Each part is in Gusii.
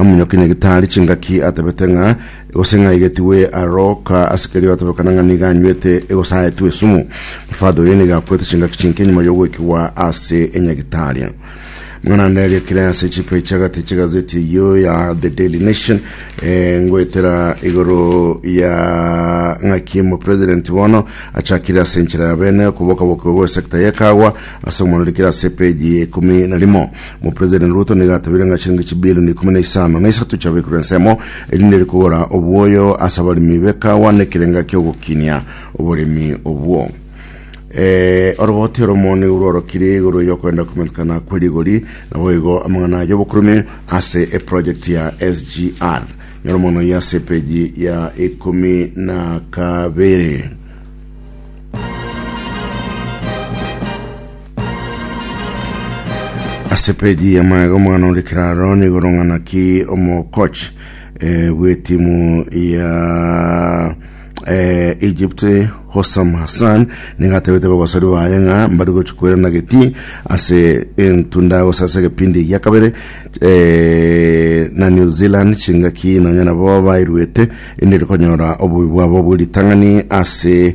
Omonyoki na gitari chingaki atebete ng'a gose ng'a aigetigwe aroka ase kerio atebekana ng'a nigo anywete egosaetwe esumu. Mofadha oyo nigo akwete chingaki chinke nyuma y'ogoikigwa ase enyagitari. Mang'ana ande ariakire ase chipae chi'agati chi'egazeti eyio ya The Daily Nation eh, ngoetera igoro ya ng'aki omopresident bono achakire ase enchera ya bene okobokabokigwa gwe sector y'ekagwa ase omonarikire ase page ya ikumi na rimo. Omopresident Ruto nigo atabire ng'a chilingi chibilioni ikomi na isano na isato chiabekerwe ensemo erinde ere kogora obwoyo ase abaremi b'ekawa na ekerenga ki'ogokinia oboremi obwo. Eh, oroboti oromo nigo rworokire igoro y'okoenda komentekana kwe rigori, naboigo amang'ana y'obokurume ase eproject ya SGR. Nyora mono ya ase epeji ya ikomi na kabere. Ase peji ya maega omwana ore kiraro nigo rong'ana ki omokoch eh, bw'etimu ya eh, Egypt Hossam Hassan nigo atebete bagosori baye ng'a mbari gochi kwerana geti ase entunda gose ase egepindi gia kabere eh, na New Zealand chingaki nonya nabo bairwete ende rikonyora obobe bwabo bw'eritang'ani ase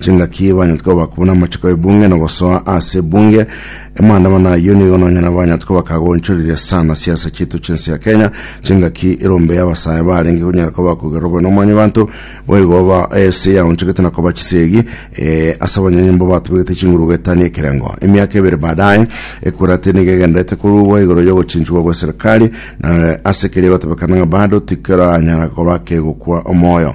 Chingaki banyarete koba bakong'u namachiko y'ebunge na ogosoa ase ebunge. Amaandamano ayio nigo nonyene abanyarete koba bakagonchorire sana siasa chiaito chi'ense ya Kenya. Chingaki erombe y'abasae barenge konyara koba bakogerera obobe na omwanyabanto, boigo ba- ense yaonchogete na koba chisegi eh, ase abanyanyomba batobegete chinguru goetania ekerengo. Emiaka ebere baadaye, Ekurati nigo egendererete korugwa igoro y'ogochinchigwa gw'eserekari, na ase keria egotebekana ng'a bado tikeranyara koba kegokwa omoyo.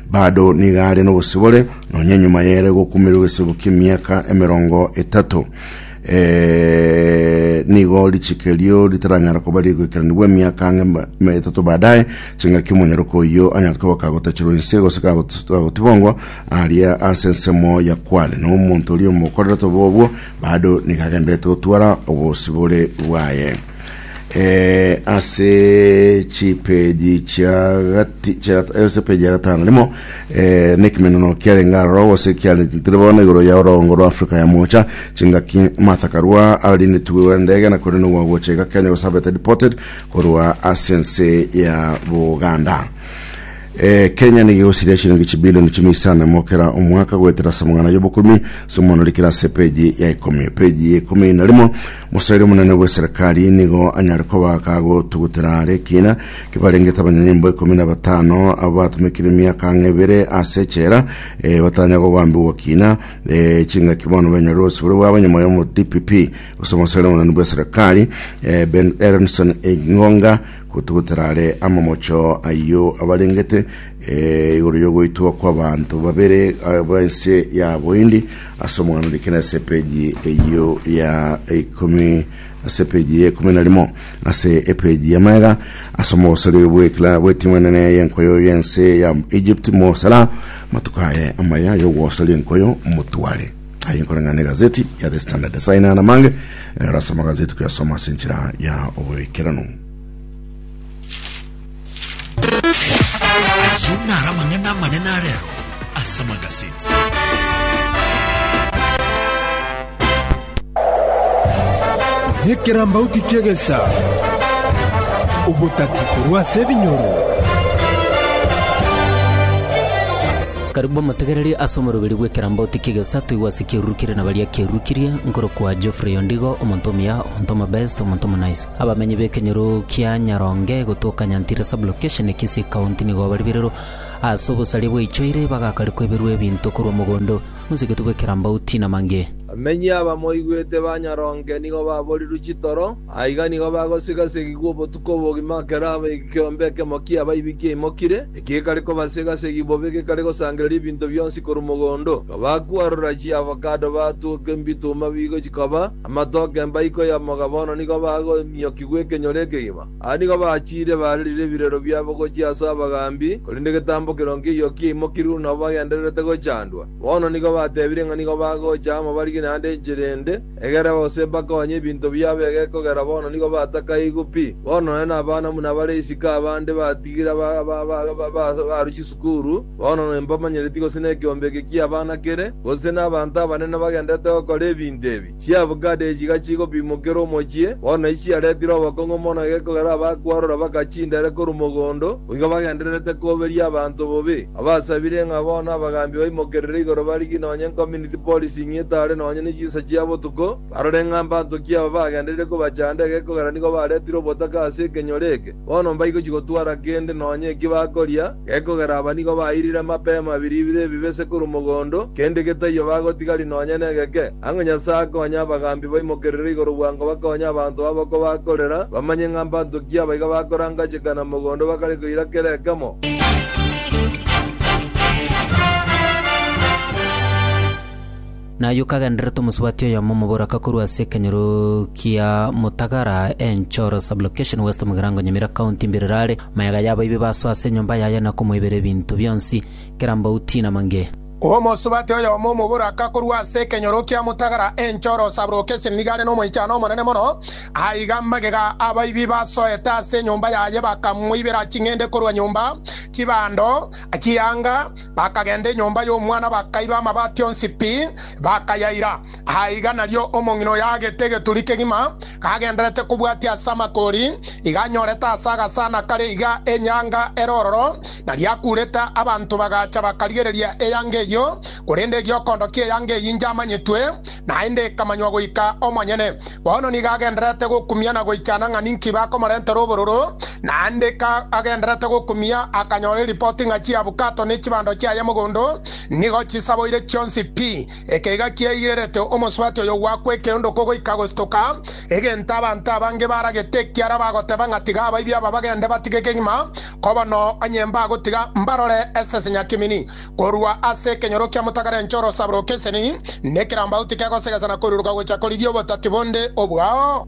Bado nigo are nobosibore nonya nyuma yere gokumerwa egesebo ki'emiaka emerongo etato. Eh, nigo richiko erio ritaranyara koba rigoikeranigwa emiaka ang'e ma- ma- etato baadaye, chingaki omonyaroka oyio anyare koba kagotachirwa inse gose kagot- kagotibongwa aria ase ensemo ya kware, na omonto oria omokorerete obobe obwo bado nigo agendererete gotwara obosibore bwaye. Eh, ase chipeji chia gati chia eh, ase peji ya gatano rimo eh, nekimeneno kiarenge aroro gose kiarentire bono igoro ya orongo rwa Afrika ya mocha chingaki Martha Karua arindetwe ndege na kore nogwa gochega Kenya gose abete deported korwa ase ense ya Buganda Eh, kenya nigigosiria shilingi chibilioni chimo isano mokera omwaka goetera samong'ana yobokumi somonori kera ase peji ya ikomi peji ya ikomi na rimo Mosairi omonene bw'eserekari nigo anyare koba kagotugutera are ekina kibarengete abanyanyimbo ikomi na batano abo batumekire emiaka ang'e ebere ase echela eh, batanya gobambigwa kina eh, chingaki bono benyarire obosibore bwabo nyuma y'omo DPP gose omosairi omonene bw'eserekari eh, Ben Erenson Engonga gotugutera are amamocho ayio abarengete Ee, igoro y'ogoitwa kw'abanto babere b'ense ya Bohindi, ase omogano like na ase epeji eyio ya ikomi ase epeji ya ikomi na rimo ase epeji ya maega ase omogosori bw'ekla bw'etimu enene y'enkoyo y'ense ya Egypt mosara matuko aye amaya y'ogogosoria enkoyo motware aye nkoreng'ana egazeti ya The Standard ase aina na mange erase amagazeti kuyasoma ase enchera ya oboikeranu. Ayio naro amang'ana amanene a rero ase amagaseti. Nekerambauti ki'egesa, obotati korwa ase ebinyoro. Karibu motegereri ase omoroberi bw'ekerambauti ki'egesa toigwe ase kiarurukirie na baria kiarurukirie, nkorokwa Geoffrey Ondigo, omonto omuya, omonto omobest, omonto omonice. Abamenyi b'ekenyoro kia Nyaronge gotoka Nyantira Sub-location, Kisii County nigo bari birero ase obosaria bwaichoire bagakarikwa eberwa ebinto korwa mogondo mosegetwe bwe Kerambauti na Mange. Abamenyi abamoigwete ba Nyaronge nigo baborirwe chitoro, aiga nigo bagosigasigigwa obotuko obogima ekero ekeombe ekemo ki'abaibi kiaimokire, ekigekare kobasigasigi bobe gekare gosangereria ebinto bionsi korwa mogondo, ekabakwarora chiavocado batwoka embituma bigo chikaba Amatoke mbaiko y'omoga bono nigo bagoimiokigwa ekenyoro ekegima. Aa nigo bachiire barerire ebirero biabo gochia ase abagaambi, korende egetambo keroo nkeiyo kiaimokire buna abwo bagendererete gochandwa. Bono nigo batebire ng'a nigo bagocha amo barigie naende enchera ende, egere gose mbakonye ebinto biabo egekogera bono nigo batakaigwe pi. Bono nonye nabana buna bare isiko abande batigire aba baruchi sukuru, Bono nonya mbamanyereti gose nekeombe eke ki'abana kere, gose nabaanto abanene bagenderete gokora ebinto ebi, chiabukada echi iga chigopimokera omochie, bono nachi chiaretire obokong'u mono egekogera abakwarora baka chindere korwa mogondo, boigo bagendererete koberia abanto bobe. Abasabire ng'a bono abagaambi baimokerere igoro barigie nonya enkominiti policing etare nonya ne chinsa chia botuko, barore ng'a mbaanto ki aba bagendereire kobachanda egekogera nigo baretire obotaka ase ekenyoro eke, bono mbaigo chigotwara kende nonya eki bakoria, Gekogera aba nigo bairire mapema biribire ebibe se korwa mogondo, kende getaiyo bagotigari nonya negeke, ang'e Nyasae akonye abagambi baimokerere igoro bwango bakonye abanto aboko bakorera, bamanye ng'a mbanto ki abaiga bakorangacheka na mogondo bakare koira kera ekemo. Na ayio kagendererete omosubati oyomo omoboraka korwa ase ekenyoro kia Mutagara, Enchoro Sub-location, West Mugirango, Nyamira County, mbirero are, maega y'abaibi basoa ase enyomba yaye na komoibera ebinto bionsi, kera mbauti na mange. Omosubati oyomo omoboraka korwa ase ekenyoro kia Mutagara, Enchoro Sub-location, nigo are nomoichano omonene mono. Aiga magega abaibi basoete ase enyomba yaye bakamoibera ching'ende korwa nyomba, chibando, chianga, Bakagenda enyomba y'omwana bakaiba amabati onsi pi, bakayaira. Aiga nario omong'ina oyo aagete egeturi kegima, kagenderete kobwatia ase amakori, iga anyorete ase agasana kare iga enyanga ere ororo, na riakurete. Abanto bagacha bakarigereria eyanga eyio, korende egiokondo ki'eyanga eyio injamanyetwe. Naende ikamanywa goika omonyene. Bono nigo agendererete gokumia na goichana ng'a ninki bakomorentera obororo, naende ka agendererete gokumia akanyora eripoti ng'a chiabukato ne chibando chiaye mogondo nigo chisaboire chionsi pi. Eke iga kiaigirerete omosubati oyo gwakwa ekeondoko goika gostoka, egento abanto abange baragete ekiara bagoteba ng'a tiga abaibi aba bagende batige kegima, koba no onye mbagotiga mbarore esese nyakimini. Korwa ase ekenyoro kia motagara enchoro osabore okeseni, na ekerambau tikegosegesa na koiruruka gocha korigia obotati bonde obwao.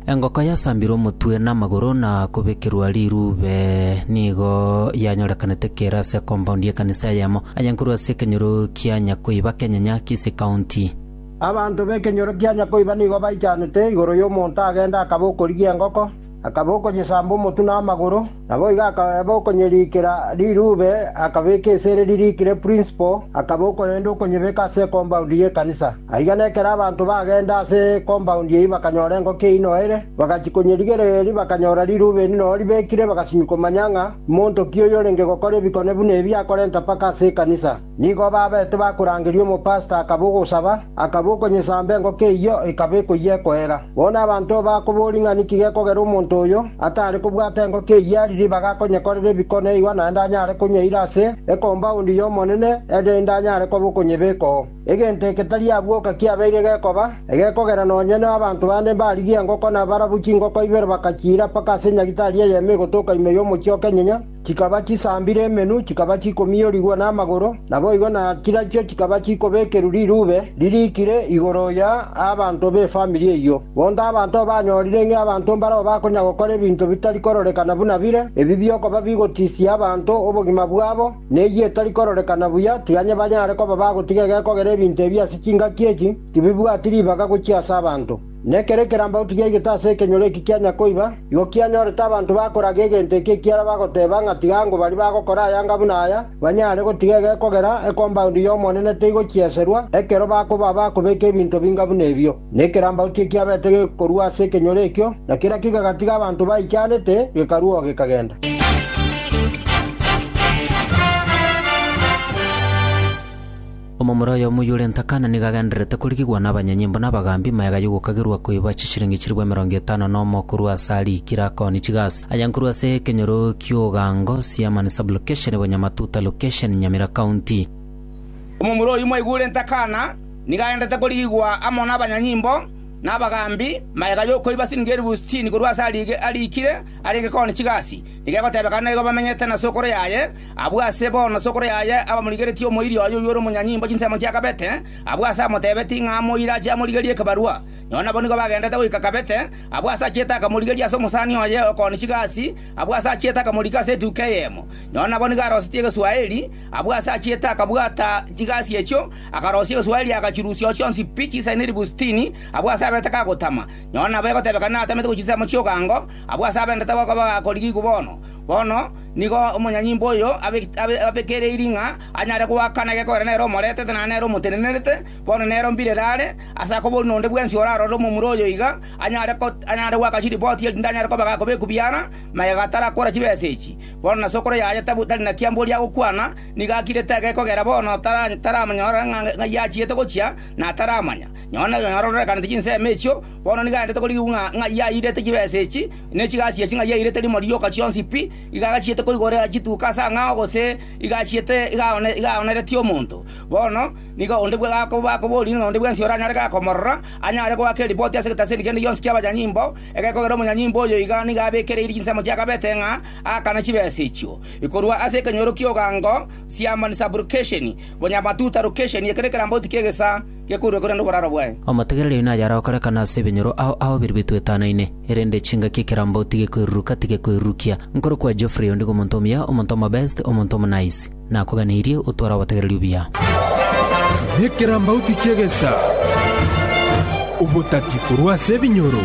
Engoko yasambirwe omotwe na amagoro na kobekerwa rirube nigo yanyorekanete kere ase compound y'ekanisa eyemo ayankorwa ase ekenyoro kia Nyakoiba Kenyanya, Kisii County. Abanto b'ekenyoro kia Nyakoiba nigo baichanete igoro y'omonto agenda akaba okorigia engoko. Akaba okonyesamba omotwe na amagoro, naboigo akaba okonyeriikera rirube, akabeka esere ririikire prinsipo, akaba okorenda okonyebeka ase ekombaundi y'ekanisa. Aiga nekero abanto bagenda ase ekombaundi eyio bakanyora engoko eyio noere, bagachia konyerigereria erio bakanyora rirube eri noo ribekire, bagasimia komanya ng'a monto ki oyorenge gokora ebikone buna ebi akorenta mpaka ase ekanisa. Nigo babete bakorangeria omopasita akaba ogosaba, akaba okonyesamba engoko eyio ekaba ekoyia ekoera. Bono abanto bakoboria ng'a niki gekogera omonto oyo atare kobwata engoko eyio ari ribaga akonyekorera ebiko neigwa naende anyare konywa eira ase ekombaundi y'Omonene erinde anyare koba okonyebekoo. Egento eke tari abwo oka kiabeire gekoba, egekogera nonye na abanto bande mbarigia engoko na barabwo chingoko ibere bakachiira mpaka ase nyagitari eyemo egotoka ime y'omochie o Kenyenya, Chikaba chisambire emenwa, chikaba chikomiorigwa namagoro, naboigo na chirachio chikaba chikobekerwa rirube ririikire igoro ya abanto b'efamiri eyio. Bondo abanto banyorire ng'a abanto mbarao bakonya gokora ebinto bitari kororekana buna bire, ebi biokoba bigotisia abanto obogima bwabo, na eyio etari kororekana buya, tiga onye banyare koba bagotiga egekogera ebinto ebi ase chingaki echi, tibibwati ribaga gochia ase abanto. Nekero ekerambauti giaigete ase ekenyoro eki kia Nyakoiba, igo kianyorete abanto bakoraga egento eki ekiara bagoteba ng'a tiga ango baria bagokora ayanga buna aya banyare gotiga egekogera ekombaundi y'Omonene teigokieserwa ekero bakoba abakobeka ebinto binga buna ebio. Na ekerambauti ekiabete gekorua ase ekenyoro ekio, na kerakio gegatiga abanto baichanete, gekarua oo gekagenda. Omomura oyomo oyio ore ntakana nigo agendererete korigigwa nabanyanyimbo na abagambi magega y'ogokagerwa koiba chishilingi chilifu emerongo etano nomo korwa ase aria Kirakoni Chigas, aya nkorwa ase ekenyoro ki'ogango Siamani Sub-location ebo Nyamatuta Location, Nyamira County. Omomura oyio mwaigwa ore ntakana nigo agendererete korigigwa amo nabanyanyimbo na abagambi magega y'okoiba silingi elifu sitini korwa ase aria aria ikire arenge Koni Chigas, nigo egotebekana naigo bamenyete na sokoro yaye, Abwo ase bono sokoro yaye abamorigeretie omoiri oye oyio ore omonyanyimbo chinsemo chia Kabete, abwo ase amotebetie ng'a amoire ache amorigerie ekebarua. Nao nabo nigo bagendete goika Kabete, abwo ase achiete akamorigeria ase omosani oye o kooni chigasi, abwo ase achiete akamorika ase etuko eyemo. Nao nabo nigo arosetie egeswaeri, abwo ase achiete akabwata chigasi echio, akarosia egeswaeri agachirusia chionsi pi chisaine ribu sitini, abwo ase abaete kagotama. Nao nabo egotebekana natamete gochia chinsemo chi'ogango, abwo ase abendete goka bagakorigia igwa bono. Bono nigo omonyanyimbo oyo abekereirie ng'a anyare goaka naki ekobera nere omoretete na nere omotenenerete, bono nere o mbirere are, ase akoboria nonde bwensi orarore omomura oyo iga, anyare goaka chiripoti erinde anyare kobega akobe ekubiara, magega atarakora chibesa echi. Bono na sokoro yaye tari na kiamboria agokwana, nigo akirete age kogera bono taramonyora ng'ai achiete gochia, na ataramanya. Nonye nororekaneti chinsemo echio, bono nigo aendete korigigwa ng'a ng'ai airete chibesa echi, ne chigasiya ching'a yairete rimo rioka chionsi pi, iga agachiete koigora chituko ase ang'ao gose iga achiete iga aoneretie omonto. Bono nigo onde bwe bakoboorire ng'a onde bwensi oranyare iga komorora, anyare goaka eripoti ase egetaseni kende gionsi ki'abanyanyimbo, egekogera omonyanyimbo oyo iga nigo abekereiri chinsemo chi'akabete ng'a aakane chibesa echio. Korwa ase ekenyoro ki'ogango, siamba, ni subrogation, bonyamatutha, location, ekero ekerambauti ki'egesaa, gekoirwe korende oboraro bwaye. Omotegereri oyo naye arokorekana ase ebinyoro ao ao biria bitwetanaine, erende chingaki ekerambo tigekoiruruka, tigekoirurukia. Nkorokwa Geoffrey, ondigo omonto omuya, omonto omobest, omonto omonice. Nakoganeirie otware obotegereri obuya. Nekerambauti ki'egesaa, obotati korwa ase ebinyoro.